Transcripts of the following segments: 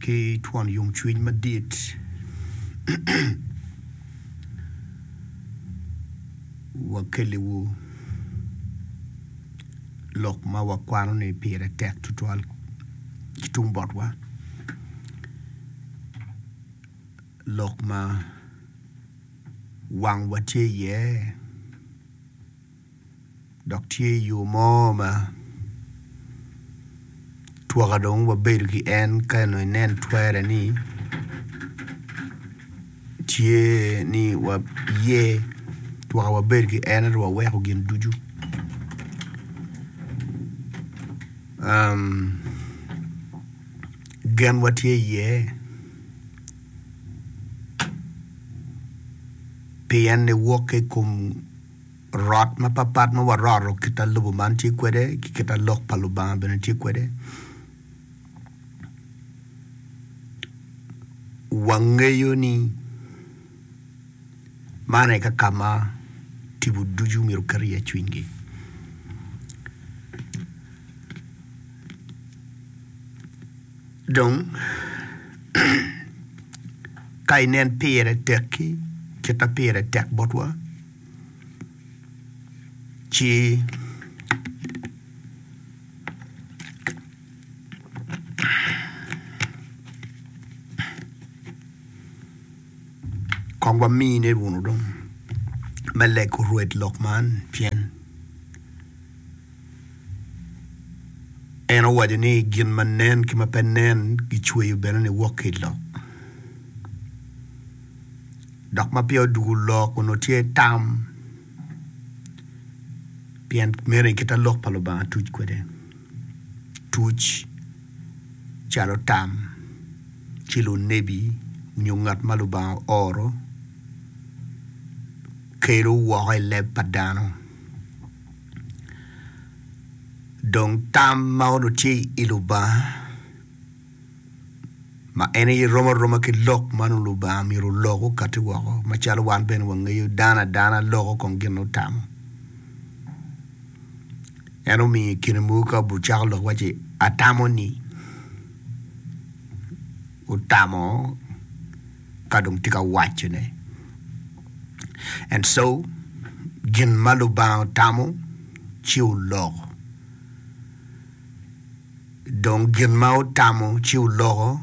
ki twon yomcwiny madit wakelliwu lok ma wakwano ni pire tek tutwal ki tung botwa, lok ma wangwa tye iye. dok tye i yo mo ma twaka dong wabedo ki en ka nongo inen twere ni tye ni waye twaka wabedo ki en ento waweko gin ducu genwa tye iye pien niwokke i kom rot mapapat ma waroto kit ma lobo man tye kwede ki kit ma Lok pa Lubanga bene tye kwede. Wangeyo ni man aye ka ka ma tipo ducu myero oket iye cwinygi. Dong, ka inen pire tekki kit ma pire tek botwa, ci kong wamine wunu dong me lego rwed lok man, pien. En owaco ni, Gin ma nen ki ma pe nen gicweyo bene niwok ki i lok. Dok ma peya odwogo lok onongo tye tam, pien meno aye kite Lok pa Lubanga tuc kwede. Tuc calo tam ci lunebi nyo ngat ma Lubanga ooro kelo woko i leb pa dano. Dong tam ma onongo tye i Lubanga ma en aye rom aroma ki lok ma nongo Lubanga myero olok okati woko macalo wan bene wangeyo dano adana loko kong gin ma otamo. En omiyo i kine mogo ka ocako lok waci atamo ni, otamo. ka dong tye ka wacone. And so, gin ma Lubanga otamo ci oloko. Dong gin ma otamo ci oloko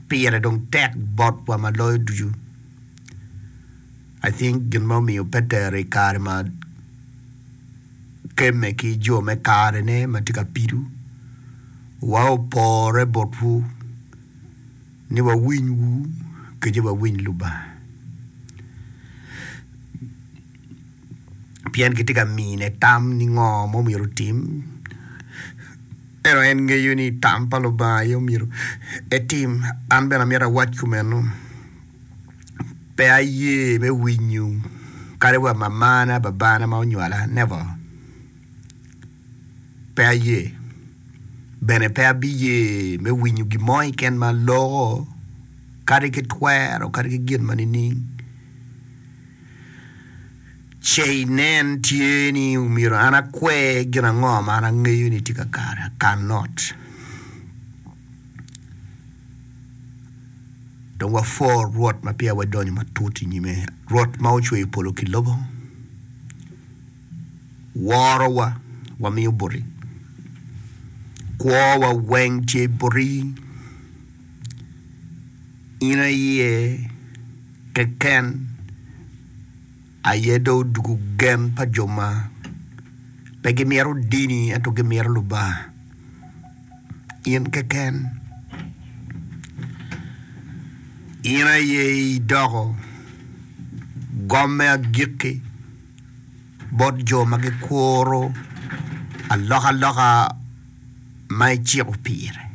pire dong tek bot wa ma loyo ducu. I think gin ma omiyo Petero i kare ma kemme ki jo me kare ne ma tye ka pido wa opore botwu ni wawiny wu kece wawiny Lubanga pien kitye ka mine tam ni ngo ma omyero otim ento en ngeyo ni tam pa Lubanga aye omyero etim an bene amyero awac kumeno pe aye me winyo kadi wa mamana babana ma onywala never. pe aye, bene pe abiye me winyo gin mo keken ma loko, kadi ki twero, kadi ki gin ma nining. Ce inen tye ni myero an akwe gin ango ma an angeyo ni tye kakare, I can not. Dong wapwor Rwot ma peya wadonyo matut i nyime, Rwot ma ocweyo polo ki lobo. worowa wamiyo boti, kwowa weng tye boti, in aye keken aye dong odwogo gen pa jo ma pe gimito dini ento gimito Lubanga, in keken in aye idoko gom me agikki. bot jo ma gikuro alokaloka ma iciko pire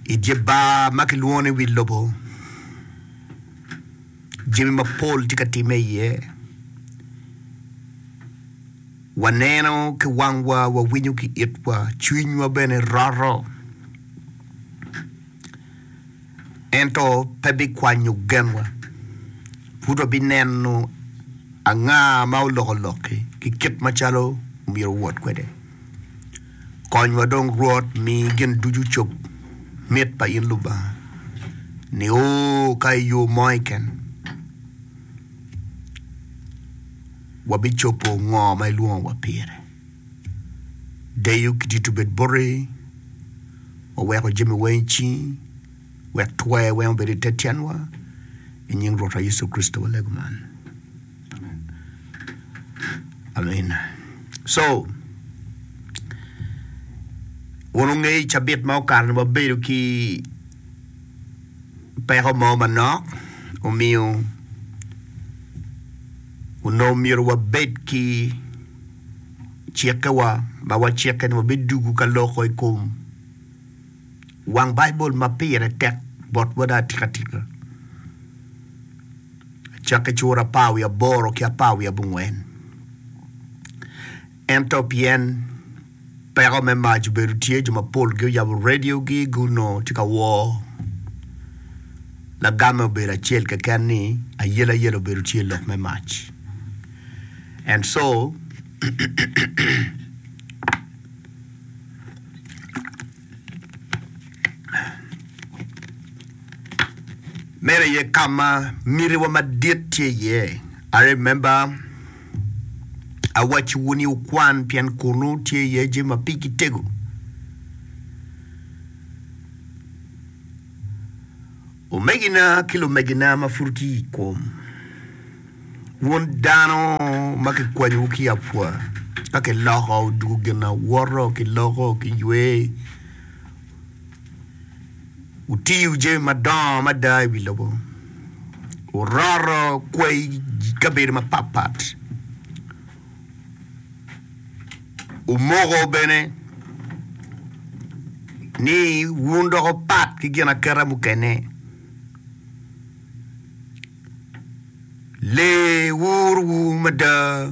i dye bar ma kilwongo ni Wi Lobo. Jami mapol tye ka timme iye, waneno ki wangwa, wawinyo ki itwa, cwinywa bene roto. ento pe bikwanyo genwa. Pud wabineno anga ma oloko lokki ki kit macalo omyero owot kwede. Konywa dong Rwot, mi gin ducu cob mit pa in Lubanga, nio ka i yo mo keken wabicobo ngo ma ilwongowa pire. Deyo ki tito obed bote, waweko jami weng i cingi, wek twer weng obed i te tyenwa, i nying Rwotwa Yecu Kricito walego man, amin. So, wun wungeyo i cabit ma okato-ni wabedo ki peko mo manok omiyo onongo myero wabed ki cikkewa ma wacikke ni wabidugo ka loko i kom wang Baibul ma pire tek bot wada atikatika. Acakke cura apar wiye aboro ki apar wiye abongwen. Ento pien peko me mac obedo tye, jo mapol guyabo radiogi gunongo tye ka wor. Lagamme obedo acel keken ni ayelayela obedo tye lok me mac. And so, meno aye ka ma mitiwa madit tye iye. I remember. Awacciwu ni wukwan, pien kunnu tye iye jami ma pigi tego. Omegina ki lumegina ma pud ki i kom, wun dano ma kikwanyowu ki i apwa, ka kiloko dwogo ginawoto, kiloko kiywe, Wutiyo jami madongo mada i wi lobo, wuroto kwayi i kabedo mapatpat, wumoko bene ni wun dok wupat ki ginaketa mukene. Lee wurowu mada.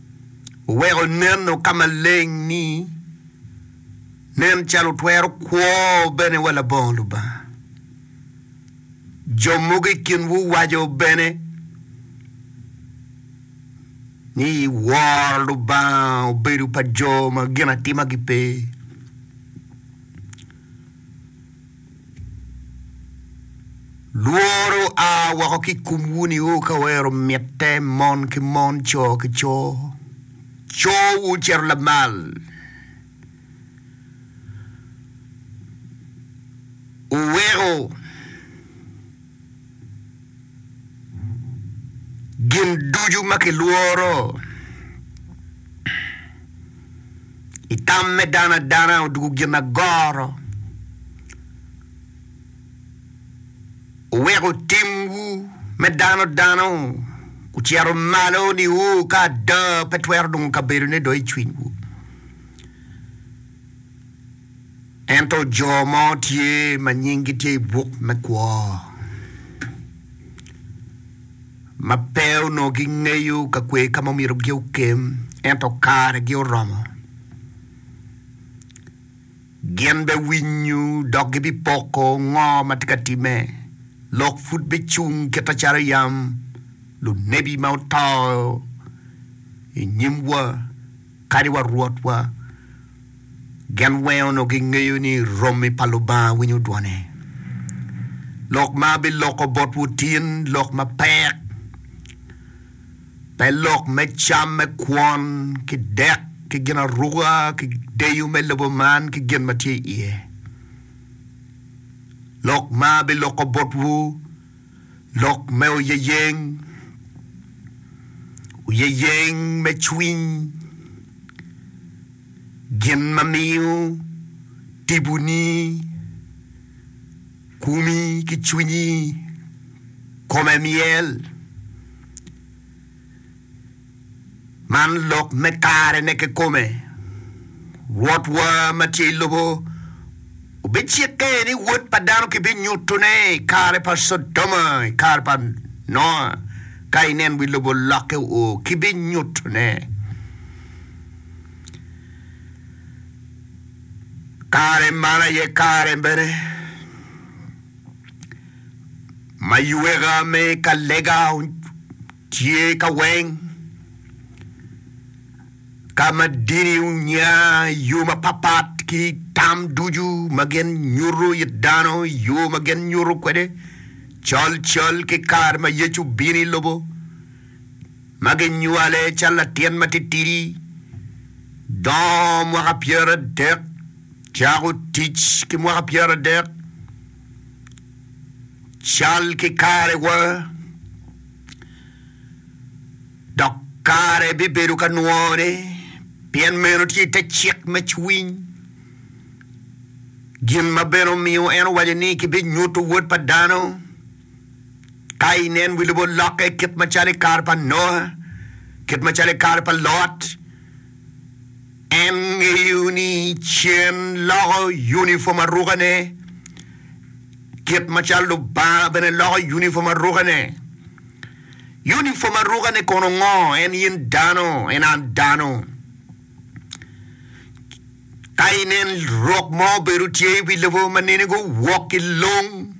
oweko neno ka maleng ni nen calo twero kwo bene wa labongo Lubanga. Jo mogo i kinwu waco bene ni woro Lubanga obedo pa jo ma ginatimagi pe. Lworo a woko ki i komwu nio ka wero mitte, mon ki mon, co ki co. Cowu cito lamal. Wuweko. Gin ducu ma kilworo i tam me dano adana odwogo gin agoro, oweko timwu me dano dano ocito malo niu ka ada pe twero nongo kabedone dong i cwinywu. Ento jo mo tye ma nyinggi tye i buk me kwo ma pe onongo gingeyo ka kwer ka ma omyero gi okem, ento karegi oromo. Gin biwinyo dok gibipoko ngo ma tye ka timme. Lok pud bicung kit acalo yam lunebi ma oto i nyimwa. Kadi wa Rwotwa gen weng onongo gingeyo ni romi pa Lubanga winyo dwone. Lok ma abiloko botwu tin lok ma pek, pe lok me cam me kwon ki dek ki ginaruka ki deyo me lobo man ki gin ma tye iye. Lok ma abiloko botwu, Lok me oyeyeng, Oyeyeng me cwiny, gin ma miyo tibuni, kumi ki cwinyi kome myel. Man lok me karene kikome. Rwotwa ma tye i lobo obicikke ni Wod pa dano kibinyutone i kare pa Codoma, i kare pa Noa. Ka inen wi lobo lokke o, kibinyutone. Kare man aye kare bene ma yweka me ka lega Tye ka weng ka ma dini onya i yo mapatpat ki tam ducu ma gin nyuto i dano i yo ma gin nyuto kwede colcol ki kare ma Yecu obino i lobo ma ginywale calo latin matitidi, dongo mwaka pyeradek, cako tic ki mwaka pyeradek. cal ki karewa, dok kare bibedo ka nwore, pien meno tye i te cik me cwiny. Gin ma bene omiyo en owaco ni kibinyuto Wod pa dano ka inen wi lobo lokke kit macalo i kare pa Noa, kit macalo i kare pa Lot. En ngeyo ni cen loko unifom arukane, kit macalo Lubanga bene loko unifom arukane. Unifom arukane kono ngo? En in dano, en an dano. Ka inen rok mo obedo tye i wi lobo ma nene guwok ki long,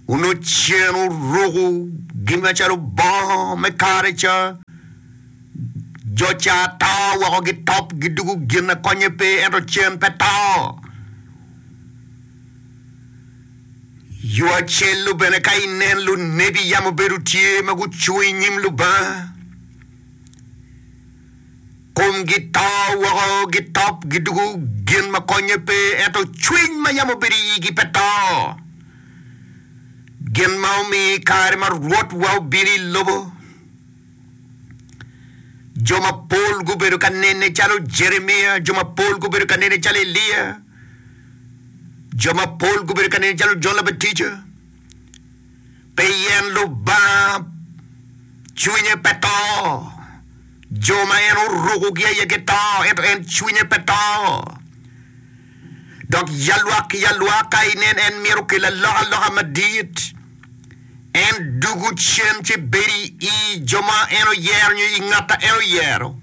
onongo cen oruko gin macalo bongo me kare ca, Jo ca to woko gitop, gidugo gin a konye pe, ento cen pe to. Yo acel-lu bene ka inen lunebi yam obedo tye ma gucung i nyim Lubanga, komgi to woko gitop, gidugo gin ma konye pe, ento cwiny ma yam obedo i igi pe to. Gin ma omiyo i kare ma Rwotwa obino i lobo, Jo mapol gubedo ka nene calo Jeremia, jo mapol gubedo ka nene calo Elia, jo mapol gubedo ka nene calo Jon Labatija. Pien Lubanga cwinye pe to. Jo ma en orukogi aye gito, ento en cwinye pe to. Dok ya lwak ki ya lwak ka inen en myero okel alokaloka madit. En dugo cen ci bedo i jo ma en oyero nyo i ngat a en oyero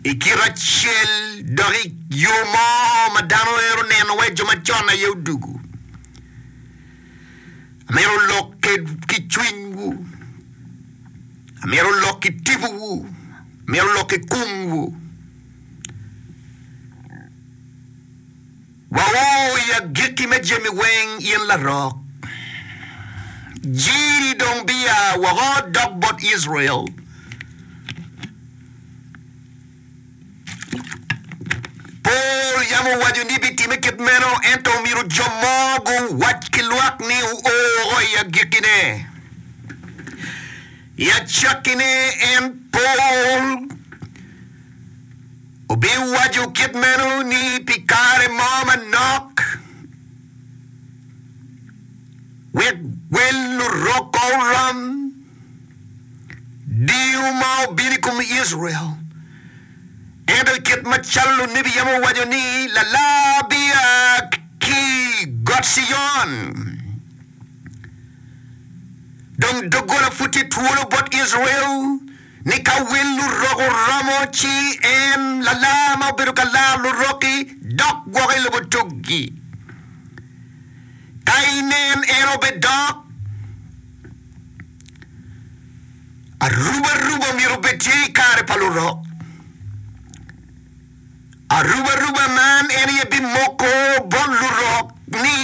i kite acel dok i yo mo ma dano ero neno wai jo macon aye odugo. Amyero olok ki cwiny wu, amyero olok ki tipo wu, amyero olok ki kum wu. Wawor i agikki me jami weng in larok, Jiri dong biya woko dok bot Icrael. Pol yam owaco ni bitimme kit meno, ento omyero jo mo guwac ki lwak ni o woko i agikkine. I acakkine en Pol. Obiwaco kit meno ni pi kare mo manok, wek wel Lurokke orom, diu ma obino i kom Icrael. Ento kit macalo lunebi yam owaco ni, Lalar bia ki got Cion. Dong doggola pud tye twolo bot Icrael. ni ka wil lurok oromo ci en, lalar ma obedo ka laro lurok-ki, dok gwoko i lubutug-gi. Ka inen en obedok, arubaruba myero obed tye i kare pa lurok. Arubaruba man en aye bimoko bot lurok ni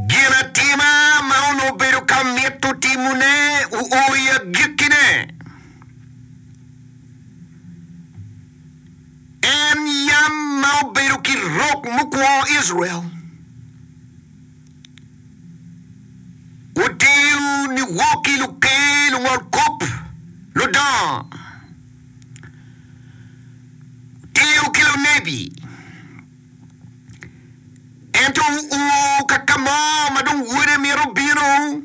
ginatima ma onongo obedo ka mito timone oo i agikkine. En yam ma obedo ki rok mukwo Icrael. Wutiyo ni wok ki luker, lungolkop, ludongo. Wutiyo ki lunebi. Ento wuo ka ka mo ma dong Wode mito bino,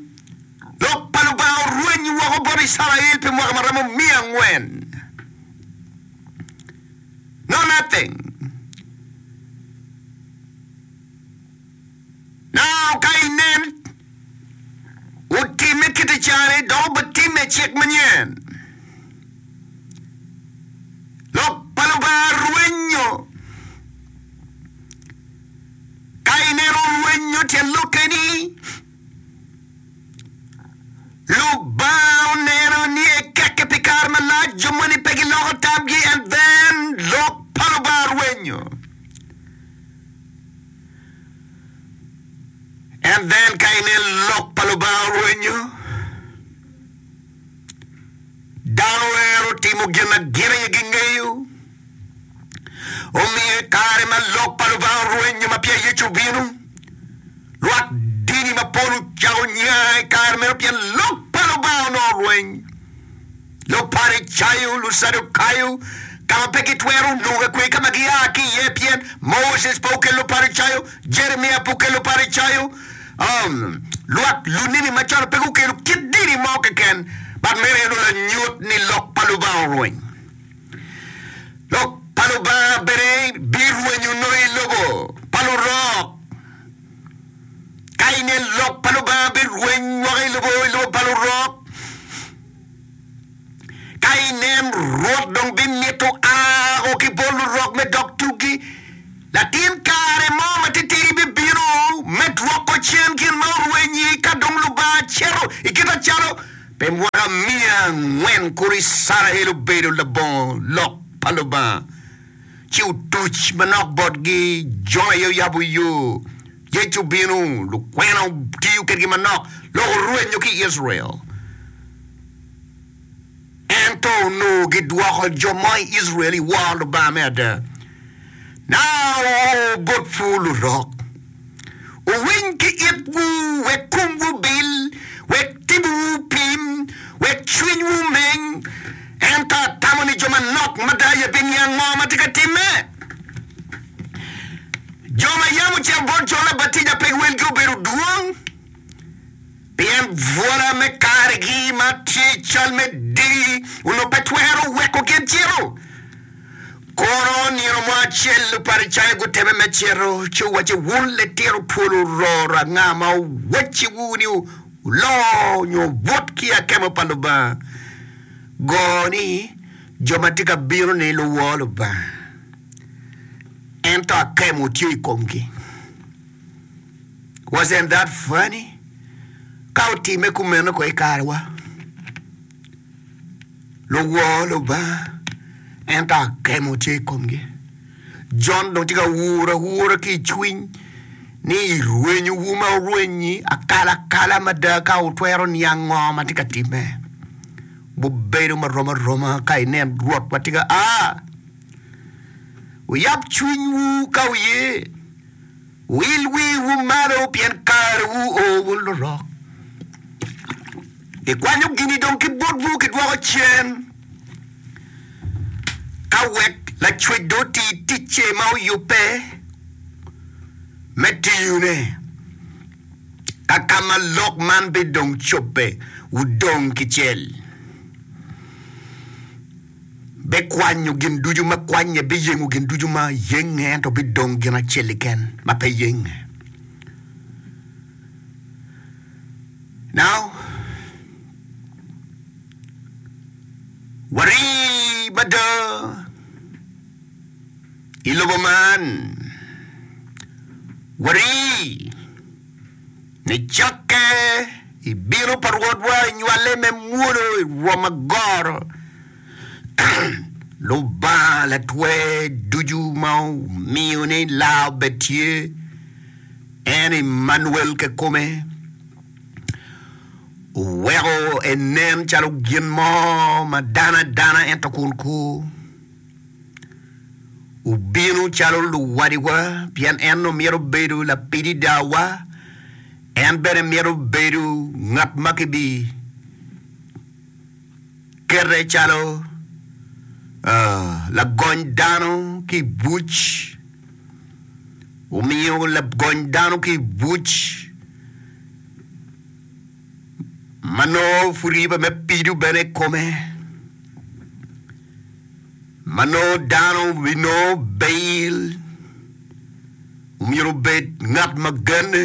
Lok pa Lubanga orwenyo woko bot Icrael pi mwaka ma romo miya angwen. No nothing. Nano ka inen otimme kite cani dok obitimme i cik manyen. Lok pa Lubanga rwenyo. Ka ineno orwenyo tyen lokke ni Lubanga oneno ni ekekke pi kare malac jo moni pe giloko tamgi and then lok pa Lubanga rwenyo. And then ka inen lok pa Lubanga orwenyo, dano wero timo gin ma gin aye gingeyo. Omiyo i kare ma lok pa Lubanga orwenyo ma peya Yecu obino, lwak dini mapol ocako nya i kare meno pien lok pa Lubanga onongo orweny. Luparicayo, Lucadukayo, ka ma pe gitwero noga kwer ka ma gia ki iye, pien Moses pe okelo Paricayo, Jeremia pe okelo Paricayo, um, lwak lunini macon pe gukelo kit dini mo keken, but meno aye nongo lanyut ni Lok pa Lubanga orweny. Lok pa Lubanga bene birwenyo nongo i lobo pa lurok. Ka ine Lok pa Lubanga birweny woko i lobo, i lobo pa lurok. Ka inen Rwot dong bimito ako ki bot lurok me dog tuggi, latin kare mo matitidi bibino me dwoko cen gin ma orwenyi ka dong Lubanga cito i kite calo pi mwaka miya angwen kuro Icrael obedo labongo lok pa Lubanga. ci otuc manok botgi, jo aye oyabo yo. Yecu obino, lukwena otiyo kedgi manok loko orwenyo ki Icrael. Ento onongo gidwoko jo mo i Icrael i woro Lubanga me ada. Naoa bot pur lurok. owiny ki itwu, wek komwu obil, wek tibuwu opim, wek cwinywu omeng. Ento atamo ni jo manok mada aye biniang ango ma tye ka timme. Jo ma yam ocito bot Jon Labatija pe giwelgi obedo dwong. Pien bwora me kargi ma tye cal me diri onongo pe twero weko gin cito. Kono nino mo acel Luparicayo guteme me cito, ci owacce, Wun litino pol ororo, anga ma owacciwu ni wuloo nyo wubut ki i akemo pa Lubanga? Go ni, Jo ma tye ka bino-ni luwo Lubanga, ento akemo tye i komgi. Wasn't that funny? Ka otimme kumeno kong i karewa, luwo Lubanga, ento akemo tye i komgi. Jon dong tye ka wuro awura ki i cwiny ni i rwenyowu ma wurwenyi akalakala mada ka wutwero niang ngo ma tye ka timme. Wubedo marom aroma ka inen Rwot ma tye ka a. Wuyab cwinywu ka wuye. Wil wiwu malo pien karewu o wun lurok. Ikwanyo gini dong ki botwu kidwoko cen ka wek Lacwec dong oti ticce ma oyubbe me tiyone. Ka ka ma lok man bidong cobbe, wudong ki cel. bikwanyo gin ducu ma kwanye, biyengo gin ducu ma yenge, ento bidong gin acel keken ma pe yenge. Now, wari mada i lobo man, wari. Nicokke i bino pa Rwotwa enywale me mwolo i rwom agoro. Lubanga latwer ducu ma omiyo ni laa obed tye, en Emmanuel kekome, oweko enen calo gin mo ma dano adana ento kun kur. Wubino calo luwadiwa, pien en nongo mito bedo lapidi dawa, en bene mito bedo ngat ma kibi kete calo uh, lagony dano ki i buc. Wumiyo lagony dano ki i buc. ma nongo pud riba me pido bene i kome, ma nongo dano binongo bail, omyero obed ngat ma genne,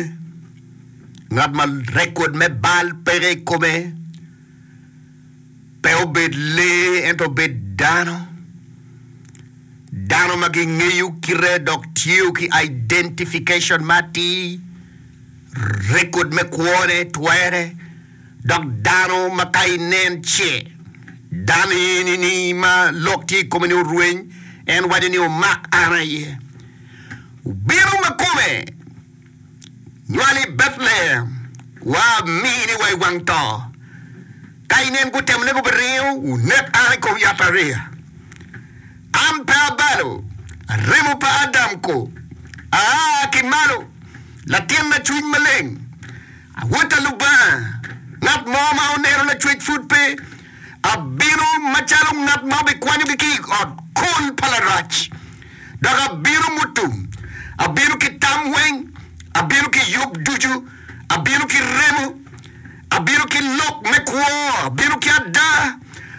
ngat ma rekod me bal peke i kome. pe obed lee ento obed dano, dano ma gingeyo kite dok tye ki identification ma atir, rekod me kwone twere, dok dano ma ka inen ce dano eni ni ma lok tye i kome ni orweny, en waco ni omak an aye. Obino ma kome. Lwal i Betlehem, wa amini wa i wang to. Ka inen gutemo nego biringo wunek an i kom yatariya. An pe abalo remo pa Adam ko, aa ki malo, latinna cwiny maleng, awota Lubanga, ngat mo ma onero lacwec pud pe, abino macalo ngat ma obikwanyogi ki i ot kul pa Larac. Dok abino mutum, abino ki tam weng, abino ki yub ducu, abino ki remo, abino ki lok me kwo, abino ki ada,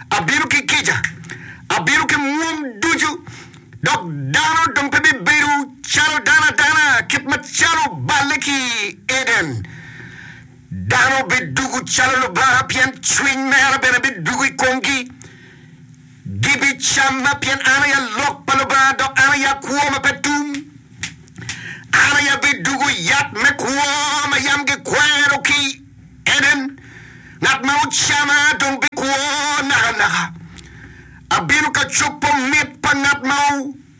abino ki kica, abino ki mwom ducu, dok dano dong pe bibedo calo dano adana, kit macalo oballe ki i Eden. Dano bidwogo calo Lubanga, pien Cwiny mere bene bidwogo i komgi. Gibicamma, pien an aye lok pa Lubanga, dok an aye akwo ma pe tum. An aye abidugo yat me kwo ma yam gikwero ki i Eden. Ngat ma ocama dong bikwo nakanaka. Abino ka cobo mit pa ngat ma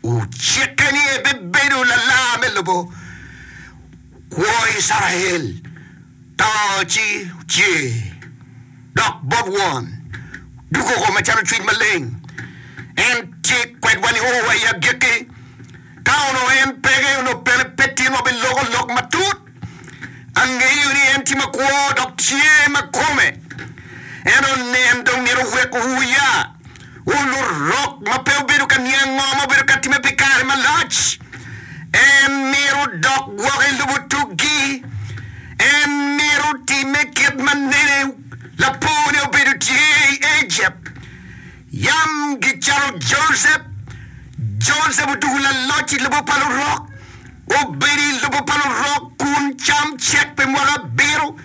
Ocike ni ebibedo lalar me lobo kwo Icrael, to ci ocer dok bot Won dugogo macalo Cwiny Maleng. En tye kwedwa nio wa i agikki. Ka onongo en peke, onongo pene pe tyenwa biloko lok matut. Angeyo ni en tye makwo dok tye ma kome. En onen dong myero owek wuya. Wun lurok ma pe wubedo ka niang ngo ma wubedo ka time pi kare malac. En myero wudok gwok i lubo tuggi. En myero wutime kit ma nene lapor ne obedo tye i Egypt. Yam gicalo Josep, Josep otuku laloc i lobo pa lurok, obedo i lobo pa lurok kun cam cek pi mwaka abiro.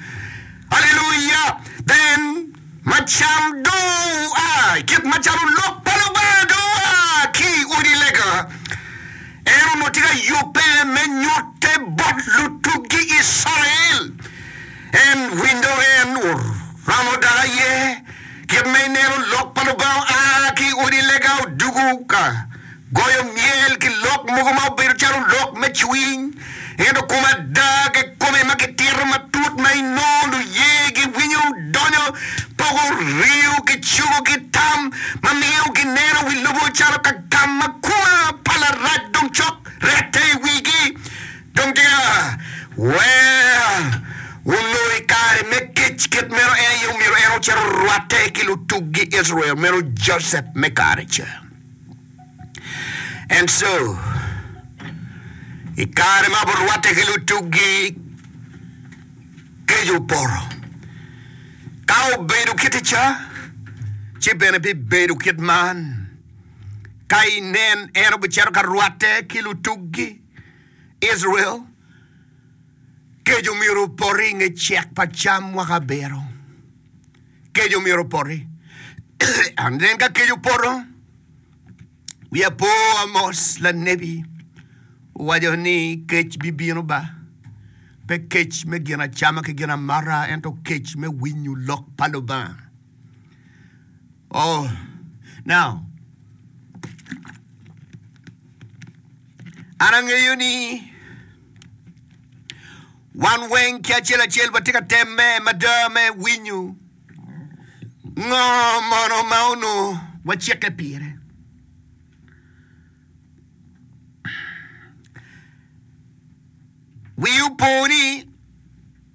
Aleluya! Then, ma cam dong oa, kit macalo Lok pa Lubanga dong oa ki i odi lega, en onongo tye ka yubbe me nyutte bot lutuggi Icrael. En winyo en oromo dok aye. Kit ma ineno Lok pa Lubanga a ki i odi lega odugo ka goyo myel ki lok mogo ma obedo calo lok me cwiny, ento kom ada kekome ma kitito matut ma inongo luye giwinyo donyo poko riyo ki cogo ki tam ma miyo gineno wi lobo calo ka gam ma kuma pa larac dong cok rette i wigi. Dong tika wek onongo i kare me kec kit meno, en aye omyero en ocit orwatte ki lutuggi Icrael meno Josep me kare ca? Ento, i kare ma gurwatte ki lutuggi, kec opoto. Ka obedo kiti ca, ci bene bibedo kit man. Ka inen, en obicito ka rwatte ki lutuggi. Icrael, kec omyero opoti i nge cek pa cam mwaka abiro. Kec omyero opoti. And then ka kec opoto, wi apo Amos lanebi owaco ni kec bibino ba, pe kec me gin acama ki gin amata, ento kec me winyo lok pa Lubanga. Oh, now, An angeyo ni wan weng ki acel acel watye ka temme mada me winyo ngo mono ma onongo wacikke pire. Wiu po ni.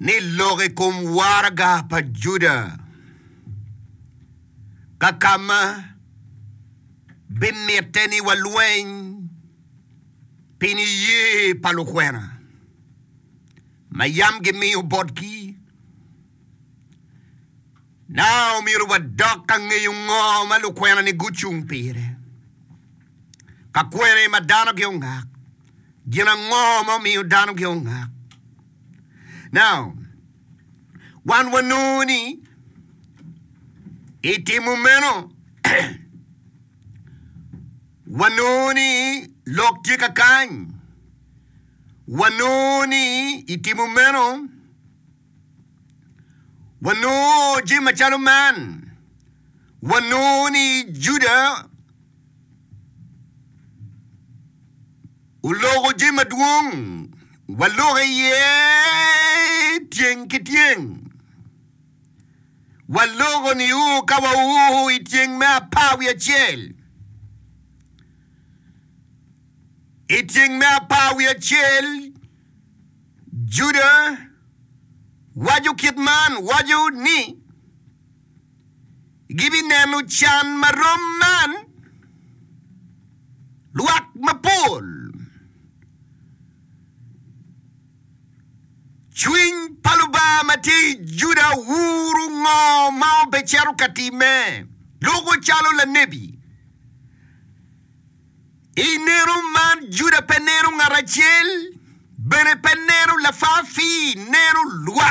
ni lok i kom waraga pa Juda ka ka ma bimitte ni walweny pi niye pa lukwena ma yam gimiyo botgi. Na omyero wadok ka ngeyo ngo ma lukwenani gucung pire? Ka kwene ma dano giongak, gin ango ma omiyo dano giongak? Na wan wanongo ni i timo meno wanongo ni lok tye kakany, wanongo ni i timo meno, Wanongo jami macalo man, wanongo ni Juda oloko jami madwong, waloko iye tyeng ki tyeng. Waloko niu ka wau i tyeng me apar wiye acel, i tyeng me apar wiye acel Juda waco kit man waco ni gibineno can ma rom man, Lwak mapol, cwiny pa Lubanga ma tye i Juda wuro ngo ma obecito ka timme, loko calo lanebi. I neno man, Juda pe neno ngat acel, bene pe neno lafafi, neno lwak.